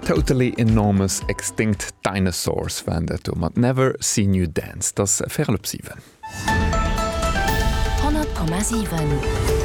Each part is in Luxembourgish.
Totally Enormous Extinct Dinosaurs waren dat do mat Never Seen You Dance. Et ass véirel op siwen. 100,7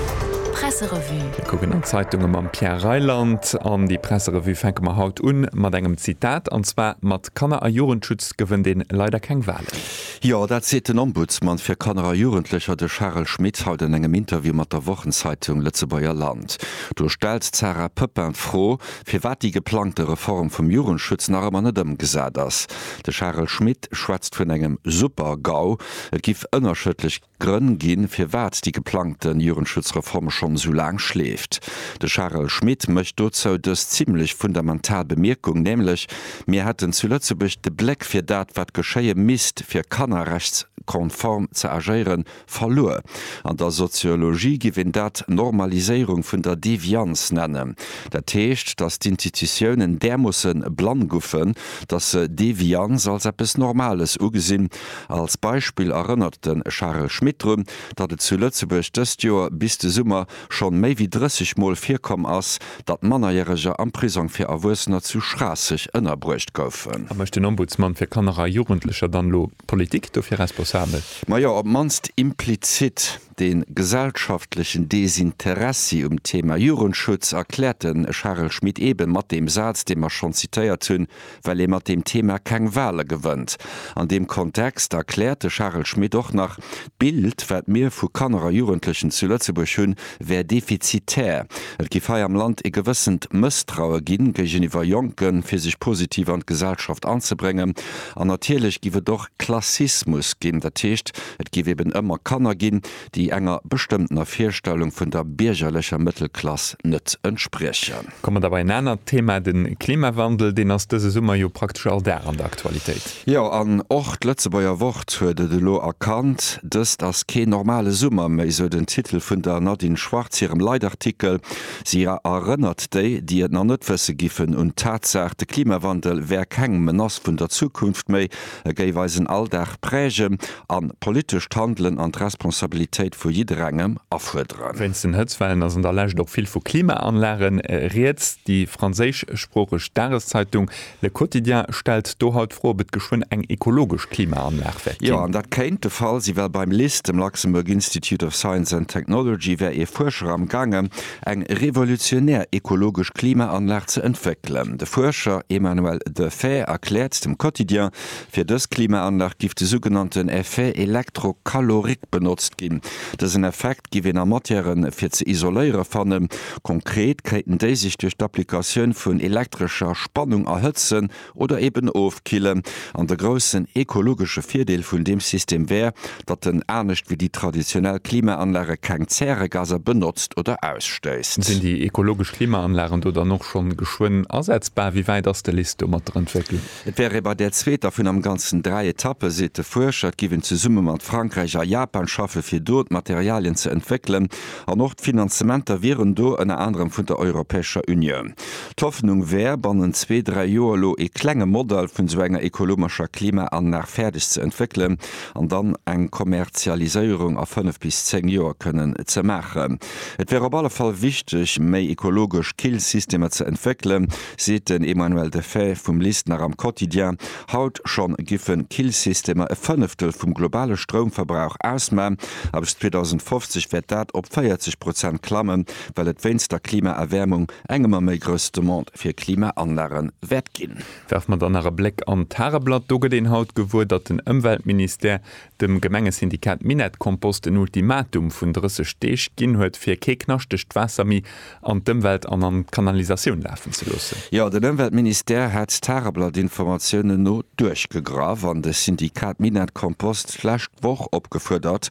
Presserevue. Mir kucken an d'Zeitunge mam Pierre Reyland. An déi Presserevue fänke mer haut un mat engem Zitat, an zwar mat Kanner a Jugendschutz gewënnt een leider keng Wahlen. Jo, dat seet den Ombudsman fir Kanner a Jugendlecher, de Charel Schmit, haut an engem Interview mat der Wochenzeitung Lëtzebuerger Land. Do stellt d'Sarah Poeppin d'Fro, firwat déi geplangte Reform vum Jugendschutz nach ëmmer net ëmgesat ass. De Charel Schmit schwätzt vun engem Super-GAU, et giff ënnerschëdlech. Grënn ginn, firwat déi geplangte Jugendschutzreform schonn esou laang schleeft. De Charel Schmit mécht dozou dës zimlech fundamental Bemierkung, nämlech, Mir hätten zu Lëtzebuerg de Bléck fir dat, wat geschéie misst, fir kannerrechtskonform ze agéieren, verluer. An der Soziologie giff een dat Normaliséierung vun der Devianz nennen. Dat heescht, datt d'Institutiounen därmoosse blann guffen, datt se Devianz als eppes Normales ugesinn, Als Beispill erënnert de Charel Schmit drun, datt et zu Lëtzebuerg dëst Joer bis de Summer schonn méi wéi 30 Mol virkomm ass, datt Mannerjäreger am Prisong fir Erwuessener zu Schraasseg ënnerbruecht goufen. A mécht den Ombudsman fir Kanner a Jugendlecher dann elo d'Politik dofir responsabel? Majo, op d'mannst implizit. De gesellschaftlechen Desinteressi um Thema Jugendschutz erkläert de Charel Schmit eebe mat deem Saz, dee mer schonn zitéiert hunn, Well ee mat deem Thema keng Wale gewënnt. An deem Kontext erkläert de Charel Schmit och nach, D'Bild, wat mir vu Kanner a Jugendlechen zu Lëtzebuerg hunn, wär defizitär. Et giff hei am Land ee gewëssent Mësstraue ginn géigeniwwer Jonken, fir sech positiv an d'Gesellschaft anzebréngen. An natierlech giff et och Klassismus ginn, dat heescht, Et géif eben ëmmer Kanner ginn, déi enger bestëmmtener Virstellung vun der biergerlecher Mëttelklass net entspriechen. Komme mer da bei en anert Thema, de Klimawandel. Deen ass dëse Summer jo praktesch all Dag an der Aktualitéit. Jo, an och d'Lëtzebuerger Wort huet et elo erkannt. Dëst ass keen normale Summer méi, sou den Titel vun der Nadine Schwarz hirem Leitartikel. Si erënnert déi, déi et nach net wësse giffen, un d'Tatsaach, de Klimawandel wär keng Menace vun der Zukunft méi, E géif eisen Alldag prägen an politescht Handelen an d'Responsabilitéit vu jidderengem afuerderen. Wéinst den Hëtzwellen ass an der Lescht och vill vu Klimaanlage rieds. Déi franséischsproocheg Dageszeitung Le Quotidien stellt do haut d'Fro, ob et geschwënn eng ekologesch Klimaanlag wäert Jo, ginn. an dat kéint de Fall sinn, well beim lis, dem Luxembourg Institute of Science and Technology, wär ee Fuerscher am gaange eng revolutionär ekologesch Klimaanlag ze entwéckelen. De Fuerscher Emmanuel Deffair erkläert dem Quotidien, fir dës Klimaanlag giff de sougenannten Effet électrocalorique benotzt ginn. Dësen Effekt giff een a Matièren fir ze isoléiere fannen. Konkret kréiten déi sech duerch d'Applikatioun vun elektrescher Spannung erhëtzen oder eben ofkillen, an de groussen ekologesche Virdeel vun deem System wär, datt en, anescht wéi déi traditionell Klimaanlage, keng Zäregaser benotzt oder ausstéisst. Sinn déi ekologesch Klimaanlagen do dann och schonn geschwënn asetzbar? Wéi wäit ass de LIST do mat der Entwécklung? Et wär ee bei där zweeter vun am Ganzen dräi Etappe, seet de Fuerscher. Et giff een zesumme mat Frankräich a Japan schaffen, fir do d'Materialien ze entwéckelen, an och d'Finanzementer wieren do, ënner anerem vun der Europäescher Unioun. D'Hoffnung wär, bannent zwee, dräi Joer elo ee klenge Modell vun esou enger ekolomerscher Klimaanlag fäerdeg ze entwéckelen an dann eng Kommerzialiséierung a fënnef bis zéng Joer kënnen ze maachen. Et wär op alle Fall wichteg, méi ekologesch Killsystemer ze entwéckelen, seet den Emmanuel Deffaix vum LIST nach am Quotidien. Haut scho giffe Killsystemer e Fënneftel vum globale Stroumverbrauch ausmaen a bis 2050 wäert dat op 40 Prozent klammen, well et wéinst der Klimaerwäermung eng ëmmer méi grouss Demande fir Klimaanlage wäert ginn. Werfe mer dann nach e Bléck an d'Tageblatt. Do gëtt een haut gewuer, datt den Ëmweltministère dem Gemengesyndikat Minett-Kompost en Ultimatum vun 30 Deeg ginn huet, fir kee knaschtegt Waasser méi an d'Ëmwelt an an d'Kanalisatioun lafen ze loossen. Jo, den Ëmweltministère hätt d'Tageblatt-Informatiounen no duerchgegraff an de Syndikat Minett-Kompost d'lescht Woch opgefuerdert,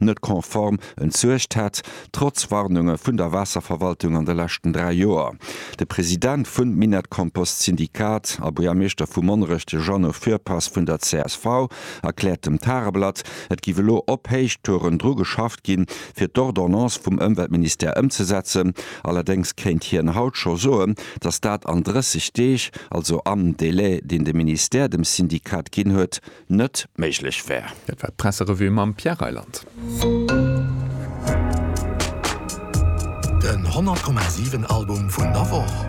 net konform entsuergt hätt, trotz Warnunge vun der Waasserverwaltung an de leschten dräi Joer. De President vun Minett-Kompost Syndikat a Buergermeeschter vu Monnerech, de Jeannot Fürpass vun der csv, erkläert dem Tageblatt, et giff elo op Héichtouren dru geschafft ginn, fir d'Ordonnance vum Ëmweltministère ëmzesetzen. Allerdéngs kéint hien haut scho soen, datt dat an 30 Deeg, also am Delai, deen de Ministère dem Syndikat ginn huet, net méiglech wär. Dat war d'Presserevue mam Pierre Reyland. Den 100,7 Album vun der Woch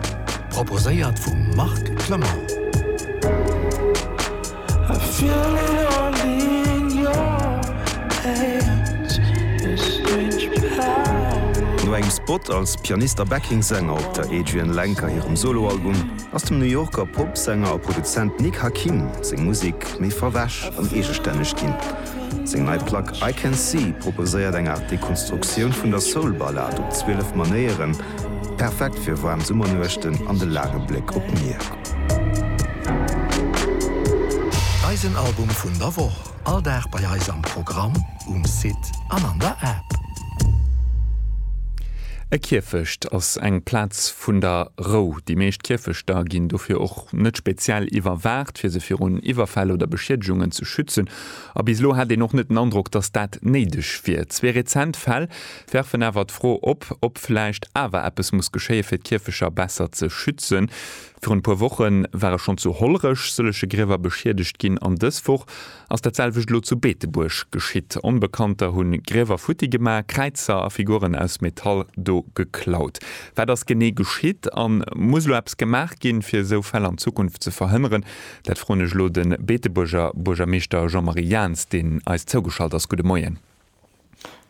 proposéiert vum Marc Clement. No engem Spot als Pianist a Backing-Sänger op der Adrianne Lenker hirem Solo-Album, ass dem New Yorker Pop-Sänger a Produzent Nick Hakim seng Musek méi verwäsch an eegestänneg ginn. Seng nei Plack I Can See proposéiert eng Aart Dekonstruktioun vun der Soul-Ballad op 12 Manéieren, perfekt fir waarm Summernuechten an de laange Bléck op d'Mier. Eisen Album vun der Woch. All Dag bei eis am Programm, um Site an an der App. E Kierfecht ass eng Plaz vun der Rou. Déi meescht Kierfechter ginn dofir och net speziell iwwerwaacht, fir se virun Iwwerfäll oder Beschiedegungen ze schützen. A bis elo hat een och net den Androck, datt dat néideg wier. Zwee rezent Fäll werfen awer d'Fro op, ob vläicht awer eppes muss geschéien, fir d'Kierfeger besser ze schützen. Virun e puer Woche ware schonn zu Hollerech sëllege Griewer beschiedegt ginn an dës Woch ass dat selwecht elo zu Beetebuerg geschitt. Onbekannter hu Griewer futti gemaach, Kräizer a Figuren aus Metall do geklaut. Wat ass genee geschitt a muss elo eppes gemaach ginn, fir esou Fäll an Zukunft ze verhënneren? Dat froen ech elo de Beetebuerger Buergermeeschter Jean-Marie Jaentz, deen eis zougeschalt ass. Gudde Moien.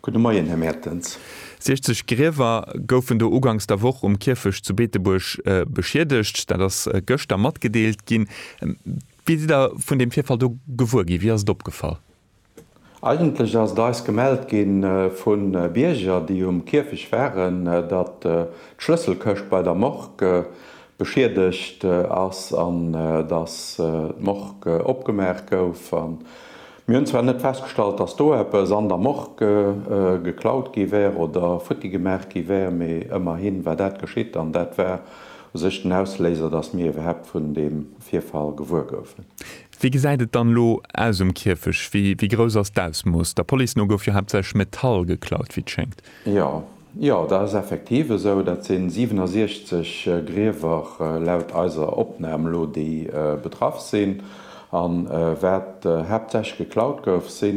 Gudde Moien, Här Mertens. 60 Griewer goufen do ugangs der Woch um Kierfecht zu Beetebuerg beschiedegt. Dat ass gëschter matgedeelt ginn. Wéi sidd Der vun deem Virfall do gewuer ginn? Wie ass et opgefall? Eigentlech ass et eis gemellt gi vu Bierger, déi um Kierfecht waren, datt d'Schlësselkëscht bei der Morgue beschiedegt ass an datt d'Morgue opgemaach gouf. Mir hunn zwar net festgestallt, dass do eppes an der Morgue geklaut gi wär oder futti gemaach gi wär, mee ëmmerhi war dat geschitt an dat war u sech den Ausléiser, dass mir iwwerhaapt vun deem Virfall gewuer goufen. Wéi gesäit et dann elo aus um Kierfecht? Wéi grouss ass d'Ausmooss? Der Police no gouf jo haaptsächlech Metall geklaut, wéi et schéngt. Jo, Jo, dat ass effektiv esou. Dat si 67 Griewer laut eiser Opnam elo, déi betraff sinn. A wat haaptsächlech geklaut gouf, si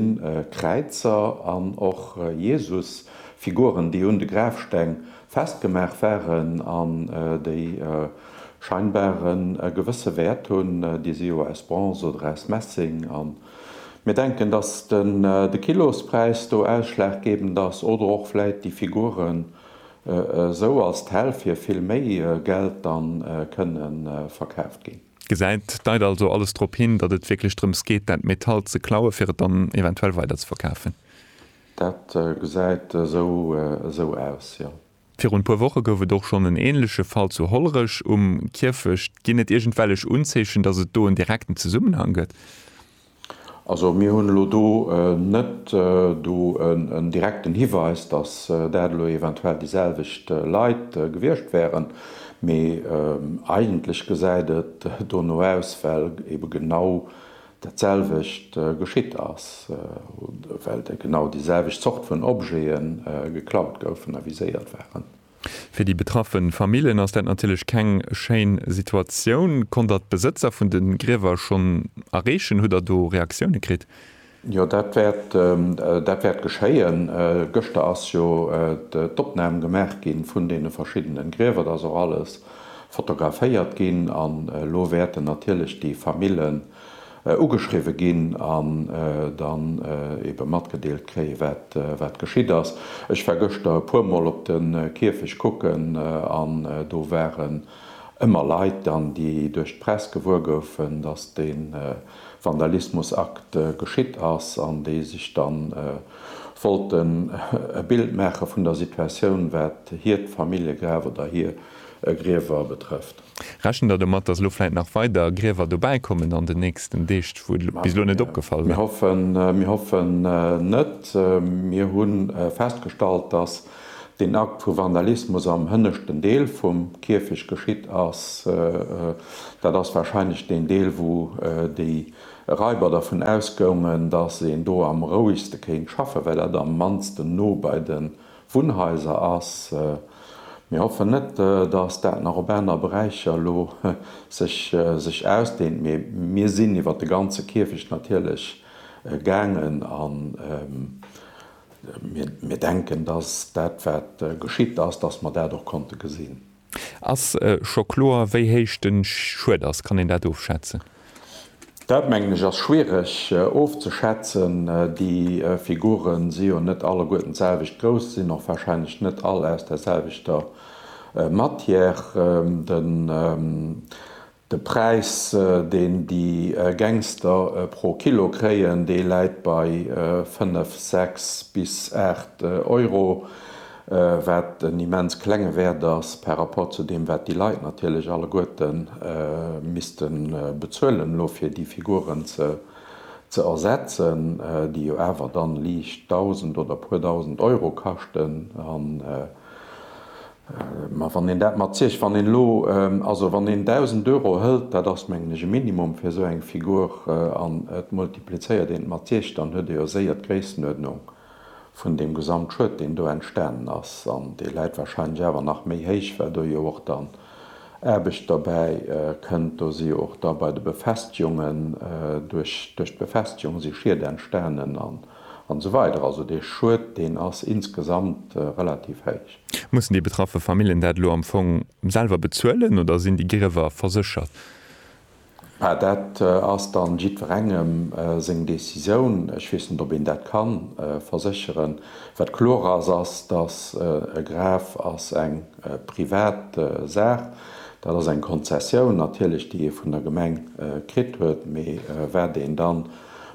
Kräizer an och Jesusfiguren, déi un de Grafsteng festgemaach waren an déi scheinbar e gewësse Wäert hunn. Déi si jo aus Bronze oder aus Messing. Mir denken, dass den de Kilospräis do ausschlaggebend ass oder och vläit déi Figuren esou als d'Häll fir vill méi Geld dann kënne verkaaft ginn. Gesäit, deit also alles drop hin, datt et wierklech drëms geet dat Metall ze klauen, fir et dann eventuell weiderzeverkafen? Dat gesäit esou aus, jo. Virun puer Woche gouf et och schonn en änleche Fall zu Hollerech um Kierfecht. Ginn et iergendwellech Unzeechen, datt et do en direkten Zesummenhang gëtt? Also mir hunn elo do net do en direkten Hiweis, datt dat elo eventuell déi selwecht Leit gewiescht wären, mee eigentlech gesäit et dono aus, well ebe genau Dat selwecht geschitt ass, well genau déi selwecht Zort vun Objete geklaut goufen a viséiert waren. Fir déi betraffe Famillen ass dat natierlech keng schéin Situatioun. Konnt Der d'Besëtzer vun de Griewer schonn erreechen? Hutt Der do Reaktioune kritt? Jo, dat wäert geschéien. Gëschter ass jo d'Opnam gemaach gi vun deene verschiddene Griewer. Dat ass och alles fotograféiert ginn an elo wäerten natierlech déi Famillen ugeschriwwe ginn an dann eebe matgedeelt kréien, wat geschitt ass. Ech war gëschter e puermol op de Kierfecht kucken an do waren ëmmer Leit dann, déi duerch d'Press gewuer goufen, dass dee Vandalismusakt geschitt ass an déi sech dann wollten e Bild maache vun der Situatioun, wat hiert Familljegraf oder hir Griewer betrëfft. Rechent Der domat, datt elo vläit nach weider Griewer dobäi kommen an den nächsten Deeg, wou et bis elo net opgefall war? Mir hoffen net. Mir hu festgestallt, datt deen Akt vu Vandalismus am hënneschten Deel vum Kierfecht geschitt ass. Dat ass warscheinlech deen Deel, wou déi Raiber dervun ausgoungen, datt een do am rouegste kéint schaffen, well dat am mannsten no bei de Wunnhaiser ass. Mir hoffen net, datt dat nach op aner Beräicher elo sech ausdehnt, mee mir sinn iwwer de ganze Kierfecht natierlech gaangen a mir denken, datt dat wat geschitt ass, datt mer dat och konnte gesinn. Ass scho kloer, wéi héich de Schued ass? Kann een dat ofschätzen? Dat, mengen ech, ass schwiereg ofzeschätzen. Déi Figure si jo net alleguerten d'selwecht grouss, sinn och warscheinlech net all aus der selwechter Matière. De De Präis, deen déi Gangster pro Kilo kréien, dee läit bei 5, 6 bis 8 Euro, wat en immens klenge Wäert ass par rapport zu deem, wat déi Leit natierlech alleguerte misste bezuelen elo, fir déi Figuren ze ersetzen, déi jo awer dann liicht Dausend oder e puer Dausend Euro kaschten. Mä wann een dat mat Zich, wann een elo, also wann een 1.000 Euro hëlt, dat ass mengen ech e Minimum fir esou eng Figur, an et multiplizéiert een et mat Zich, dann huet ee jo séier d'Gréisstenuerdnung vun deem Gesamtschued, deen do entstanen ass. An dee läit wahrscheinlech awer nach méi héich, well do jo och dann Aarbecht derbäi kënnt. Do si jo och da bei de Befestigungen, duerch d'Befestigung si Schied entstanen. An esou weider Also dee Schued, deen ass insgesamt relativ héich. Mussen déi betraffe Familljen dat elo am Fong selwer bezuelen oder sinn déi Griewer verséchert? Mä dat ass da jiddwerengem seng Decisioun. Ech weess net, ob een dat ka versécheren. Wat kloer ass, ass, datt e Graf ass eng privat Saach. Dat ass eng Konzessioun natierlech, déi ee vun der Gemeng kritt huet. Mee wat een dann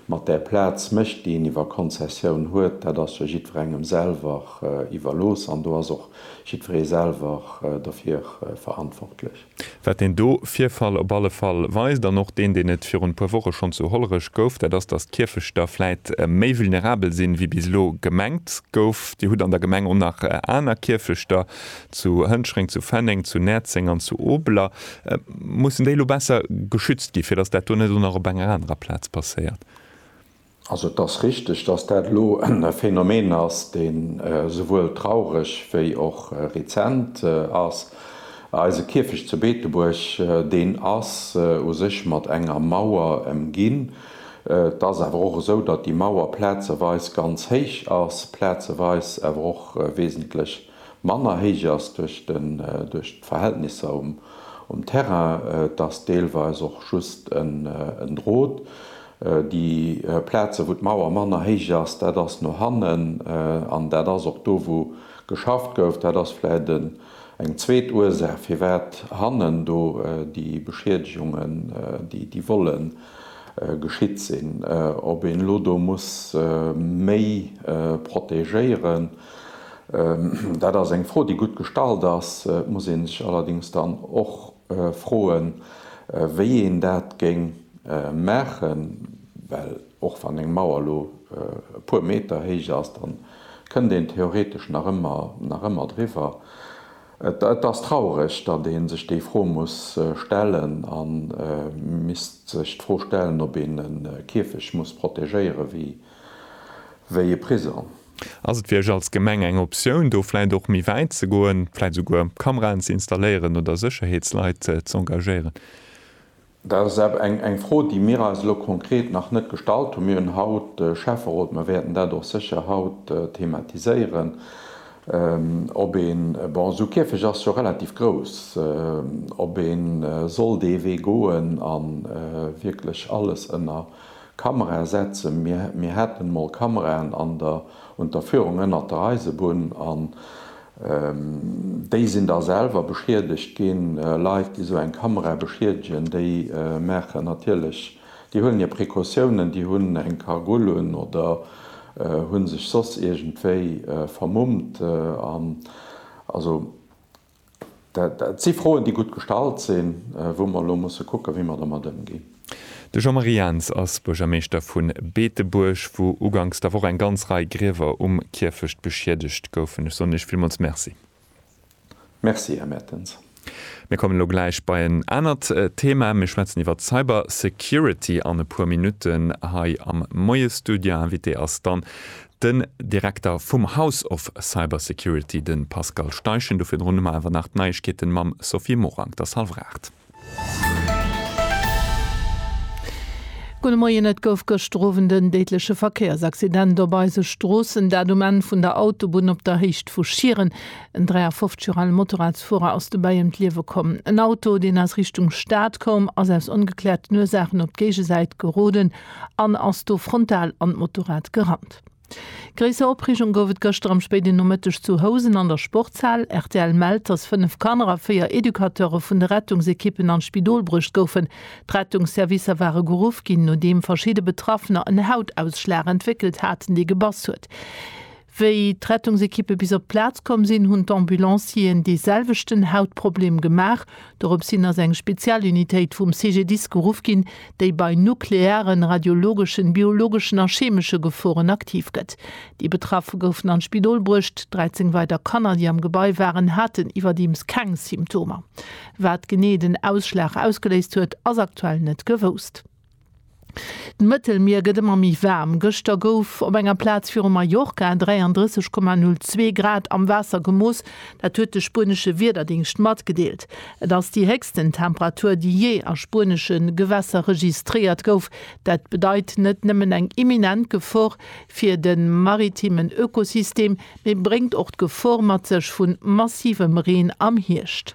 Mat där Plaz mécht, déi een iwwer Konzessioun huet, dat ass jo jiddwerengem selwer iwwerlooss an do ass och jiddweree selwer dofir verantwortlech. Wat deen do Virfall op alle Fall weist, an och deen, deen et virun e puer Woche schonn zu Hollerech gouf, dat ass, datt d'Kierfechter vläit méi vulnerabel sinn, wéi bis elo gemengt gouf. Dir hutt an der Gemeng och nach aner Kierfechter, zu Hënschreng, zu Fenneng, zu Näerzeng an zu Obeler, mussen déi elo besser geschützt ginn, fir datt dat do net och nach op enger anerer Plaz passéiert? Also et ass richteg, datt dat elo e Phänomen ass, deen esouwuel traureg wéi och rezent ass. Eise Kierfecht zu Beetebuerg, deen ass u sech mat enger Mauer ëmginn. Et ass awer och esou, datt déi Mauer plazeweis ganz héich ass, plazeweis awer och wesentlech manner héich ass duerch den, duerch d'Verhältnisser um, um Terrain. Et ass deelweis och just en, en Drot. Déi Plazen, wou d'Mauer manner héich ass, dat ass no hannen an dat ass och do, wou geschafft gouf. Dat ass vläicht en, eng zweet Ursaach, firwat hannen do déi Beschiedegungen, déi, déi Vollen geschitt sinn. Ob een elo do muss méi protégéieren, Dat ass eng Fro, déi gutt gestallt ass. Et muss ee sech allerdéngs dann och froen, wéi een dat géing maachen, well och wann eng Mauer elo e puer Meter héich ass, da kënnt een theoretesch nach ëmmer driwwer. Et ass traureg, datt ee sech déi Fro muss stellen a misst sech d'Fro stellen, ob een e Kierfecht muss protegéieren, wéi e Prisong. Ass et fir Iech als Gemeng eng Optioun, do vläit och méi wäit ze goen, vläit esouguer Kameraen ze installéieren oder Sécherheetsleit z'engagéieren? Dat ass awer eng Fro, déi mir eis elo konkret nach net gestallt hunn. Mir hunn haut de Schäfferot, mir wäerten dat och sécher haut thematiséieren, ob een, bon, esou e Käfeg ass jo relativ grouss, ob ee soll dee Wee goen a wierklech alles ënner Kamera setzen. Mir haten mol Kameraen an der Unterführung ënnert der Eisebunn an déi sinn da selwer beschiedegt ginn. Leit déi sou eng Kamera beschiedegen, déi maachen natierlech, déi huelen hir Precautiounen, déi hunn eng Kagull un oder hu sech soss iergendwéi vermummt. Also Dat si Froen, déi gutt gestallt sinn, wou mer elo musse kucken, wéi mer domat ëmginn. De Jean-Marie Jans ass Buergermeeschter vu Beetebuerg, wou uganks der Woch eng ganz Rei Griewer um Kierfecht beschiedegt goufen. Ech soen Iech villmools Merci. Merci, Här Mertens. Mir kommen elo gläich bei en anert Thema. Mir schwätzen iwwer d'Cybersecurity an e puer Minutten. Hei am Moie-Studio Invité ass dann Den Direkter vum House of Cyber Security, de Pascal Steichen. Do virdrun hu mer awer nach d'Neiegkeeten mam Sophie Morang, der Salvraart. Gudde Moien, Et gouf gëschter Owend en déidleche Verkéiersaccident op eise Stroossen, dat um Enn vun der Autobunn op der Héicht vu Schieren. En 53 Joer ale Motorradsfuerer ass dobäi ëm d'Liewe komm. En Auto, deen aus Richtung Stad koum, ass aus ongekläerten Ursaachen op d'Géigesäit geroden an ass do frontal an d'Motorrad gerannt. Gréisser Opreegung gouf et gëschter am spéiden Nomëtteg zu Housen an der Sportshal. Rtl mellt, dass fënnef Kanner a véier Educateure vun de Rettungsekippen an d'Spidol bruecht goufen. D'Rettungsservicer ware geruff ginn, nodeem verschidde Betraffener en Hautausschlag entwéckelt haten, dee gebass huet. Wéi d'Rettungsekippe bis op d'Plaz komm sinn, hunn d'Ambulancieren dee selwechten Hautproblem gemaach. Doropshin ass eng Spezialunitéit vum CGDIS geruff ginn, déi bei nuklearen, radiologeschen, biologeschen a chemesche Geforen aktiv gëtt. Déi Betraffe goufen an d'Spidol bruecht. 13 weider Kanner, déi am Gebai waren, haten iwwerdeems keng Symptomer. Wat genee den Ausschlag ausgeléist huet, ass aktuell net gewousst. D'Mëttelmier gëtt ëmmer méi waarm. Gëschter gouf op enger Plaz viru Mallorca 33,02 Grad am Waasser gemooss. Dat huet de spuenesche Wiederdéngscht matgedeelt. Et ass déi héchsten Temperatur, déi jee a spuenesche Gewässer registréiert gouf. Dat bedeit net nëmmen eng imminent Gefor fir de maritimen Ökosystem, mee bréngt och d'Gefor mat sech vu massivem Reen am Hierscht.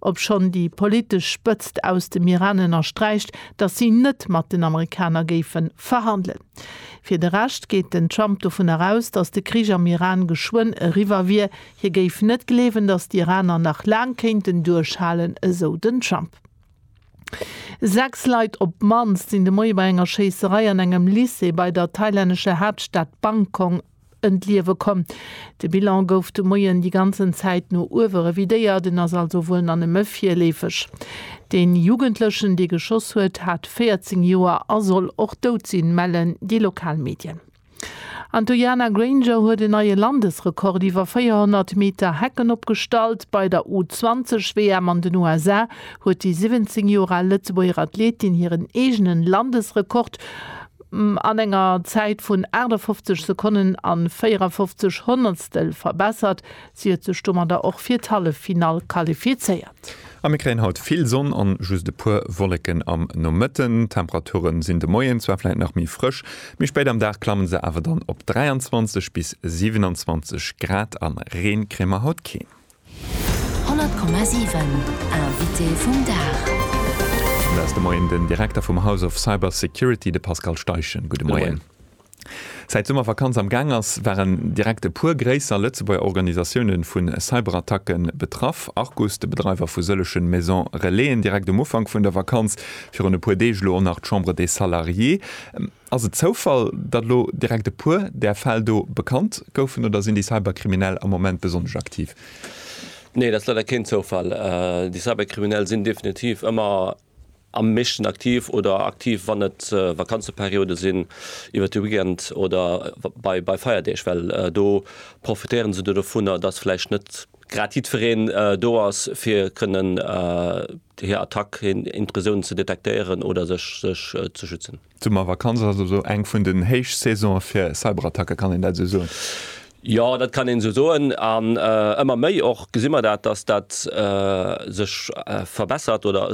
Obschonn déi politesch Spëtzt aus dem Iran ënnersträicht, datt si net mat den Amerikaner géife verhandelen. Fir de Rescht geet den Trump dovun eraus, datt de Krich am Iran geschwënn eriwwer wier. Hie géif net gleewen, datt d'Iraner nach laang kéinten duerchhalen, esou den Trump. Sechs Leit op d'mannst sinn de Moie bei enger Schéisserei an engem Lycée bei der thailännescher Haaptstad Bangkong ënt Liewe komm. De Bilan gouf de Moien déi ganzen Zäit no uewe revidéiert, en ass also wuel nach nëmme virleefeg. Deen Jugendlechen, dee geschoss huet, hat 14 Joer a soll och dout sinn, mellen déi lokal Medien. An d'Uiana Grainger huet en neie Landesrekord iwwer 400 Meter Hecken opgestallt. Bei der U20-WM an den USA huet déi 17 Joer al Lëtzebuerger Athletin hiren eegenen Landesrekord. an enger Zäit vun 58 Sekonnen a 54 Honnertstel verbessert. Si huet sech domadder och fir d'Halleffinall qualifizéiert. A mir kréien haut vill Sonn an just e puer Wolleken am Nomëtten. D'Temperaturen sinn de Moien zwar vläit nach méi frësch, mee spéit am Dag klammen se awer dann op 23 bis 27 Grad an Reen kréie mer haut keen. 100,7 Invité vum Dag. Mat eis de Moien den Direkter vum House of Cyber Security, de Pascal Steichen. Gudde Moien. Säit d'Summervakanz am Gaang ass, waren direkt e puer gréisser Lëtzebuerger Organisatioune vu Cyberattacke betraff. Arcus, de Bedreiwer vu sëllege Maison Relaisen, direkt um Ufank vun der Vakanz, virun e puer Deeg elo och nach d'Chambre des Salariés. Ass et Zoufall, datt elo direkt e puer där Fäll do bekannt goufen oder sinn déi Cyberkriminell am Moment besonnesch aktiv? Nee, dat ass leider keen Zoufall. Déi Cyberkriminell sinn definitiv ëmmer am meeschten aktiv oder aktiv, wann et Vakanzeperiode sinn, iwwert de Weekend oder bei Feierdeeg, well do profitéiere se dovunner, datt vläicht net grad jiddwereen do ass, fir kënnen hir Attack, hir Intrusioun ze detektéieren oder sech ze schützen. D'Summervakanz ass also eng vun den Héichsaisonë fir Cyberattacken, kann een dat esou soen? Jo, dat kann een esou soen. An ëmmer méi och gesi mer dat, dass dat sech verbessert oder,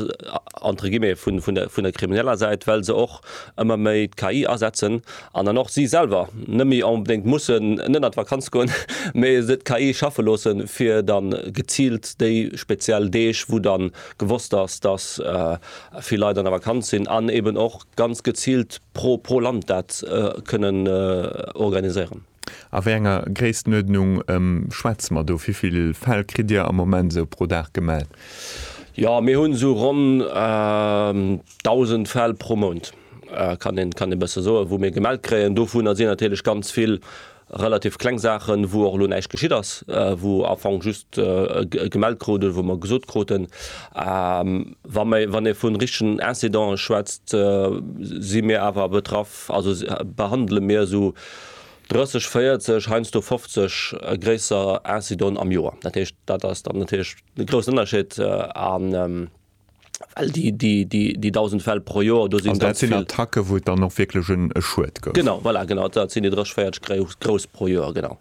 entre guillemets, vun der krimineller Säit, well se och ëmmer méi d'KI asetzen an dann och si selwer net méi onbedéngt mussen net an d'Vakanz goen, mee se d'KI schaffe loosse fir da geziilt déi speziell Deeg, wou da gewosst ass, dass vill Leit an der Vakanz sinn, an eben och ganz geziilt pro pro Land dat kënnen organiséieren. A wéi enger Gréisstenuerdnung schwätze mer do? Wéi vill Fäll kritt Dir am Moment esou pro Dag gemellt? Jo, mir hunn esou ronn 1.000 Fäll pro Mount, kann een e bësse soen, wou mir gemellt kréien. Dovunner sinn natierlech ganz vill relativ kleng Saachen, wou och elo näischt geschitt ass, wou am Fong just gemellt krut oder wou mer gesot kruten, wann ee vu richtegen Incidenten schwätzt, si mir awer betraff, also behandele mir esou 30, 40, heiansdo 50 gréisser Incidenten am Joer. Dat heescht, dat ass dann natierlech e groussen Ënnerscheed. Well déi 1.000 Fäll pro Joer, do sinn ganz vill. Also dat sinn Attacken, wou et dann och wierklech e Schued gouf? Genau, voilà, genau, dat sinn déi 30, 40 grouss pro Joer, genau.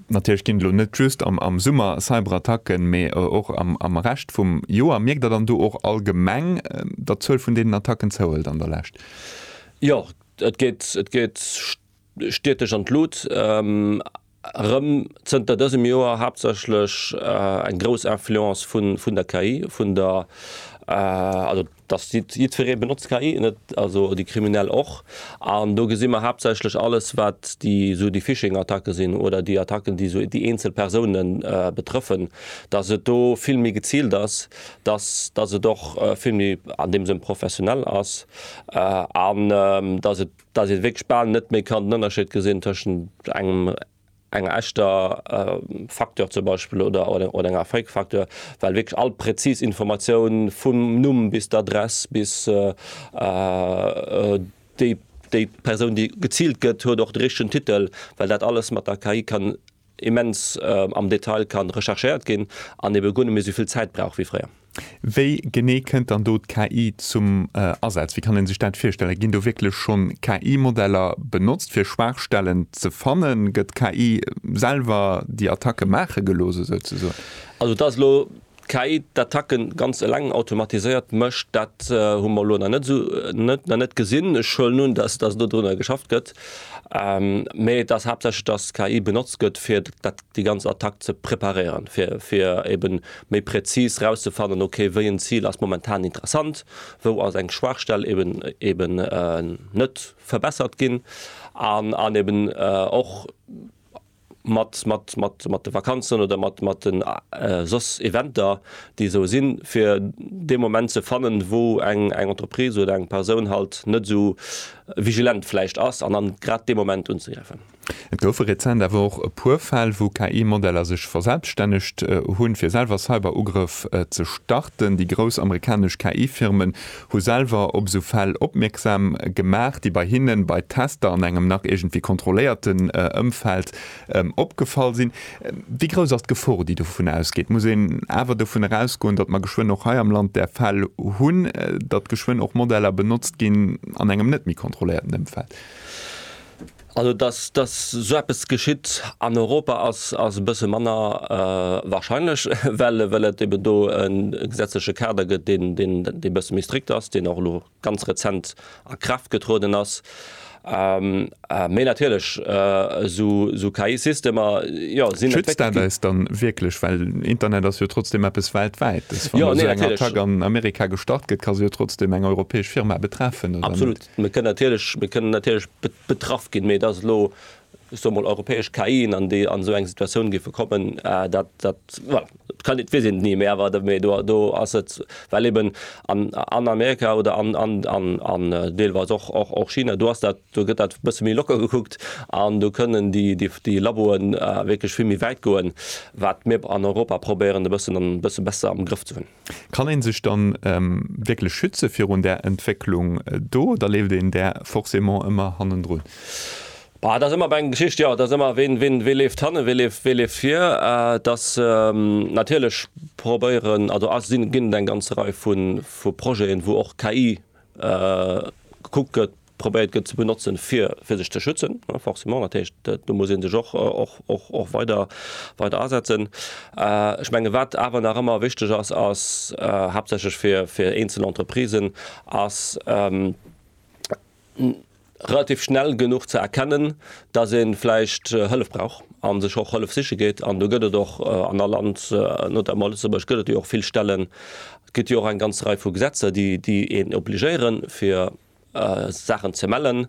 Natierlech ginn et elo net just am Summer Cyberattacken, mee och am Rescht vum Joer. Mierkt Der dann do och allgemeng, datt d'Zuel vun deenen Attacken zouhëlt an der Lescht? Jo, et geet, et geet. Stied dech an d'Lut. Erëm zënter dësem Joer haaptsächlech eng grouss Influence vun der KI, vun der, also dass jiddweree benotzt KI, net also déi Kriminell och. An do gesi mer haaptsächlech alles, wat déi esou déi Phishing-Attacke sinn oder déi Attacken, déi esou déi eenzel Persoune betrëffen, dass et do vill méi geziilt ass, dass dass et och vill méi an deem Sënn professionell ass an dass et, dass ee wierklech bal net méi kann den Ënnerscheed gesinn tëschent engem enger echter Facture zum Beispill oder oder enger Fake Facture, well wierklech all präzis Informatioun vum Numm bis d'Adress bis déi déi Persoun déi geziilt gëtt huet och de richtegen Titel, well dat alles mat der KI kann immens am Detail kann recherchéiert ginn an eben guer net méi souvill Zäit brauch wéi fréier. Wéi genee kënnt dann do d'KI zum Asaz? Wéi kann een sech dat virstellen? Ginn do wierklech schonn KI-Modeller benotzt fir Schwaachstellen ze fannen? Gëtt d'KI selwer déi Attacke maache gelooss esou ze soen? Also et ass elo D'KI d'Attacken ganz eleng automatiséiert mécht, dat hu mer elo nach net esou nach net gesinn. Ech huelen un, dass dass do drunner geschafft gëtt, mee et ass haaptsächlech, dass d'KI benotzt gëtt, fir dat déi ganz Attack ze preparéieren, fir fir eben méi präzis rauszefannen, ok wéi en Zil ass momentan interessant, wou ass eng Schwaachstell eben eben net verbessert ginn an an eben och mat mat mat mat de Vakanzen oder mat mat den soss Eventer déi esou sinn, fir dee Moment ze fannen, wou eng eng Entreprise oder eng Persoun halt net esou vigilent vläicht ass, an dann grad dee Moment unzegräifen. Et goufe rezent awer och e puer Fäll, wou KI-Modeller sech verselbststännegt hunn, fir selwer Cyber-Ugrëff ze starten. Déi grouss amerikanesch KI-Firmen Hu selwer op esou Fäll opmierksam gemaach, déi bei hinnen, bei Tester an engem nach iergendwéi kontrolléierten Ëmfeld opgefall sinn. Wéi grouss ass d'Gefor, déi dovun ausgeet? Muss een awer dovun erausgoen, datt mer geschwënn och hei am Land där Fäll hunn, datt geschwënn och Modeller benotzt ginn an engem net méi kontrolléierten Ëmfeld? Also dass dass sou eppes geschitt an Europa ass ass e bësse manner wahrscheinlech, well well et eben do e gesetzleche Kader gëtt, deen deen dee bësse méi strikt ass, deen och elo ganz rezent a Kraaft getrueden ass. Mee natierlech sou sou KI-Systemer, jo, sinn. Schützt dat eis dann wierklech? Well Internet ass jo trotzdem eppes Weltwäites. Wann esou eng Attack an Amerika gestart gëtt, ka se jo trotzdem eng europäesch Firma betreffen, oder net? Absolut. Mir kënnen natierlech, mir kënnen natierlech betraff ginn, mee dass elo, ech soe mol, europäesch KIen an déi, an esou eng Situatioun géife kommen, dat, dat, voilà, dat kann, weess een et ni. Mee awer, mee do, do ass et, well eben an, an Amerika oder an, an, an, an deelweis och, och, och China, do ass dat, do gëtt dat e bësse méi locker gekuckt an do kënnen déi, déi, déi Laboe wierklech vill méi wäit goen, wat mir an Europa probéieren e bëssen, e bësse besser am Grëff ze hunn. Kann een sech dann wierklech schützen virun där Entwécklung do oder leeft een där forcément ëmmer hannendrun? Et ass ëmmer eng Geschicht, jo, et ass ëmmer, wee leeft hannen, wee leeft vir? Et ass natierlech, probéieren, also et ginn eng ganz Rei vu Projeten, wou och KI gekuckt gëtt, probéiert gëtt ze benotzen, fir sech ze schützen, forcément. Dat heescht, do muss ee sech och weider asetzen. Ech menge wat awer nach ëmmer wichteg ass, ass haaptsächlech fir eenzel Entreprisen, ass relativ schnell genuch ze erkennen, datt ee vläicht Hëllef brauch a sech och Hëllef siche geet. An do gëtt et och an all Land, notamment a Lëtzebuerg, gëtt et jo och vill Stellen, gëtt jo och eng ganz Rei vu Gesetzer, déi een obligéieren, fir Saachen ze mellen,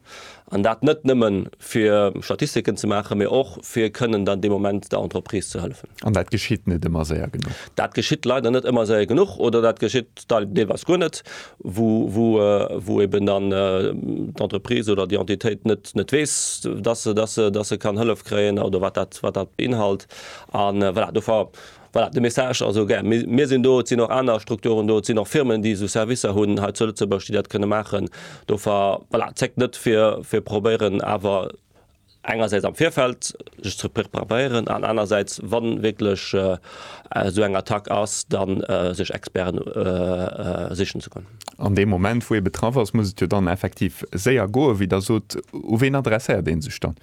an dat net nëmmen, fir Statistiken ze maachen, mee och, fir kënnen dann dee Moment der Entreprise ze hëllefen. An dat geschitt net ëmmer séier genuch? Dat geschitt leider net ëmmer séier genuch oder dat geschitt deelweis guer net, wou eeben dann d'Entreprise oder déi Entitéit net weess, dass se kann Hëllef kréien oder wat dat beinhalt. An voilà, dofir. Voilà, de Message also gär. Mir, mir sinn do, et sinn och aner Strukturen do, et sinn och Firmen, déi esou Servicer hunn hei zu Lëtzebuerg, déi dat kënne maachen. Dofer, voilà, zéckt net, fir, fir probéieren awer engersäits am Virfeld sech ze preparéieren an anerersäits, wa wierklech esou eng Attack ass, da sech Experten sichen ze goen. An deem Moment, wou ee betraff ass, muss et jo dann effektiv séier goen, wéi Der sot. U wien adresséiert ee sech dann?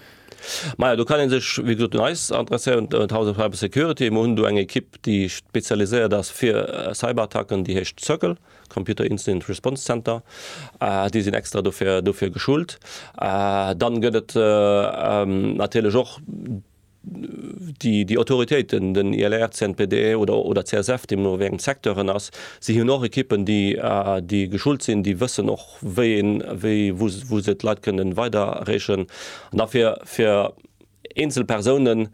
Maja, do kann ee sech, wéi gesot, un eis adresséieren, un d'House of Cyber Security. Mir hunn do eng Ekipp, déi spezialiséiert ass fir Cyberattacken, déi heescht CIRCL, Computer Incident Response Center. Déi sinn extra dofir, dofir geschult. Dann gëtt et natierlech och déi, déi Autoritéiten, den ILR, CNPD oder, oder CSF, deemno wéi engem Secteur en ass. Si hunn och Ekippen, déi, déi geschult sinn, déi wëssen och, wéi een, wéi, wou, wou se d'Leit kënnen weidererechen. An da fir, fir eenzel Persounen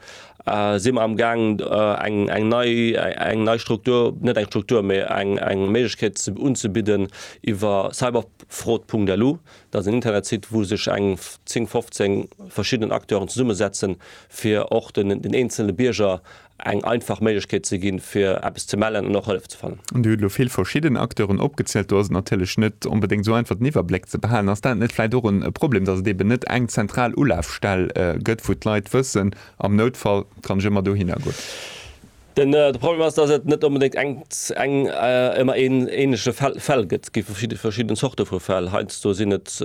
si mer amgaang eng, eng nei, eng nei Struktur, net eng Struktur, mee eng, eng Méiglechkeet ze, unzebidden iwwer cyberfraud.lu. Dat ass en Internetsite, wou sech eng 10, 15 verschidden Acteuren zesummesetzen, fir och den, den eenzele Bierger eng einfach Méiglechkeet ze ginn, fir eppes ze mellen an och Hëllef ze fannen. Dir hutt elo vill verschidden Acteuren opgezielt. Do ass et natierlech net onbedéngt esou einfach, den Iwwerbléck ze behalen. Ass dat net vläicht och e Problem, dass et eeben net eng zentral Ulafstell gëtt, wou d'Leit wëssen, am Noutfall kann ech ëmmer dohinner goen? Den Problem ass, dass et net onbedéngt eng eng ëmmer een ähnleche Fäll gëtt. Et gi verschidde verschidden Zorte vu Fäll. Heiansdo sinn et,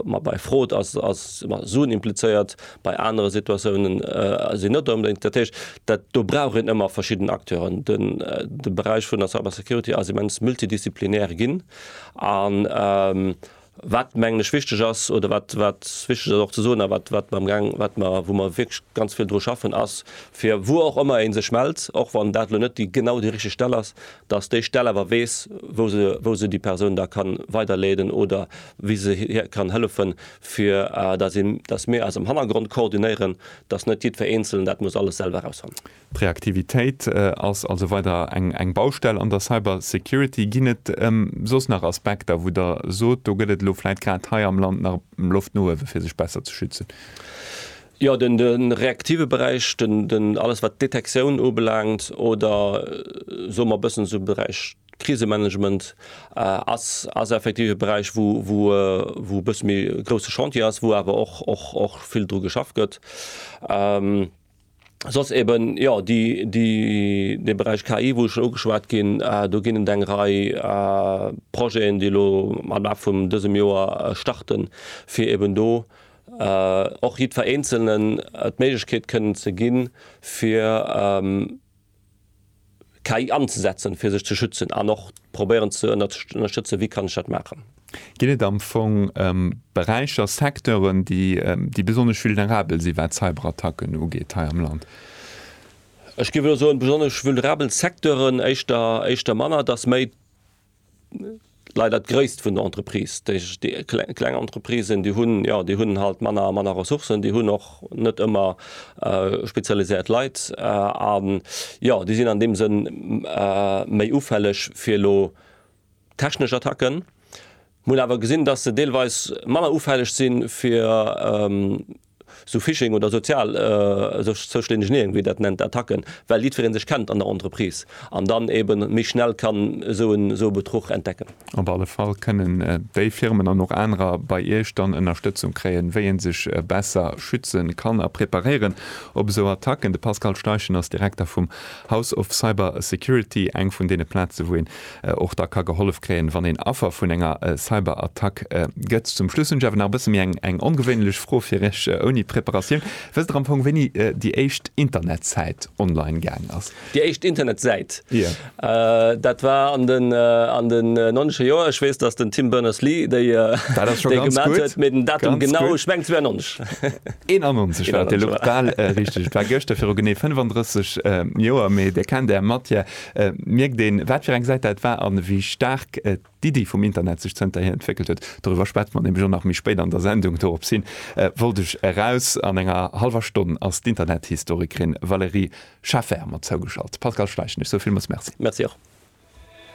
ma bei Fraude ass ass ëmmer Suen implizéiert, Bei anere Situatiounen ass een net onbedéngt. Dat heescht, dat do brauch een ëmmer verschidden Acteuren. Den de Beräich vun der Cybersecurity ass immens multidisziplinär ginn. A wat, mengen ech, wichteg ass oder wat wat wichteg ass och ze soen a wat wat mer amgaang wat mer wou mer wierklech ganz vill dru schaffen, ass fir wou och ëmmer ee sech mellt, och wann dat elo net déi genau déi richteg Stell ass, datt déi Stell awer weess, wou se wou se déi Persoun da ka weiderleeden oder wéi se hir kann hëllefen, fir datt mir eis am Hannergrond koordinéieren, datt net jiddwer Eenzelen dat muss alles selwer erausfannen. D'Reaktivitéit ass also weider eng Baustell an der Cybersecurity. Ginn et soss nach Aspekter, wou Der sot, do gëtt et elo vläit grad hei am Land nach Loft no uewe fir sech besser ze schützen? Jo, den reaktive Beräich, alles wat d'Detektioun ubelaangt oder soe mer e bëssen esou Beräich, D'Krisemanagement ass effektiv e Beräich, wou e bësse méi e grousse Chantier ass, wou awer och vill dru geschafft gëtt. Soss eben, jo, dee Beräich KI, wou ech scho ugeschwat ginn, do ginn et eng Rei Projeten, déi elo am Laf vum dësem Joer starten, fir eben do och jiddwer Eenzelnen d'Méiglechkeet kënnen ze ginn, fir KI anzesetzen, fir sech ze schützen an och probéieren ze ënnerstëtzen, wéi kann ech dat maachen. Geet et am Fong ëm Beräicher, Secteuren, déi besonnesch vulnerabel sinn, wat Cyberattacken ugeet hei am Land? Ech géif elo soen, besonnesch vulnerabel Secteuren éischter manner. Et ass méi. Leider d'Gréisst vun der Entreprise, déi kleng Entreprisen, déi hunn, jo, déi hunn halt manner, manner Ressourcen, déi hunn och net ëmmer spezialiséiert Leit a, jo, déi sinn an deem Sënn méi ufälleg fir elo technesch Attacken. Mir hunn awer gesinn, dass se deelweis manner ufälleg si fir sou Phishing oder sozial, sech zouschlenegeneen, wéi dat nennt, Attacken, well jiddweree sech kennt an der Entreprise an dann eebe méi schnell kann esou en esou e Betruch entdecken. Op alle Fall kënnen déi Firmen an och anerer bei Iech dann Ënnerstëtzung kréien, wéi ee sech besser schütze kann a preparéieren op esou Attacken. De Pascal Steichen ass Direkter vum House of Cyber Security, eng vun deene Plaze wou een och da ka gehollef kréien, wann een Affer vun enger Cyberattack gëtt. Zum Schluss hunn ech awer nach e bësse méi eng ongewéinlech Fro fir iech, ouni Preparatioun. Wësst der am Fong, wéini déi éischt Internetsäit online gaang ass? Déi éischt Internetsäit? Jo. Dat war an den an den nonnesche Joer. Ech weess, datt den Tim Berners-Lee déi Dat ass scho ganz gutt. Déi gemaach huet, mee den Datum genau, ech mengen 92. 91 war et, elo bal richteg. Et war gëschter viru genee 35 Joer. Mee Dir kennt Är Matière, Mierkt een, wat fir eng Säit dat war a wéi staark d'Iddi vum Internet sech zënterhier entwéckelt huet? Doriwwer schwätze mer nämlech och nach méi spéit an der Sendung. Dorops hin wollt ech eraus. An enger hallwer Stonn ass d'Internethistorikerin Valérie Schafer mat zougeschalt. Pascal Schleich, ech soe villmools Merci. Merci och.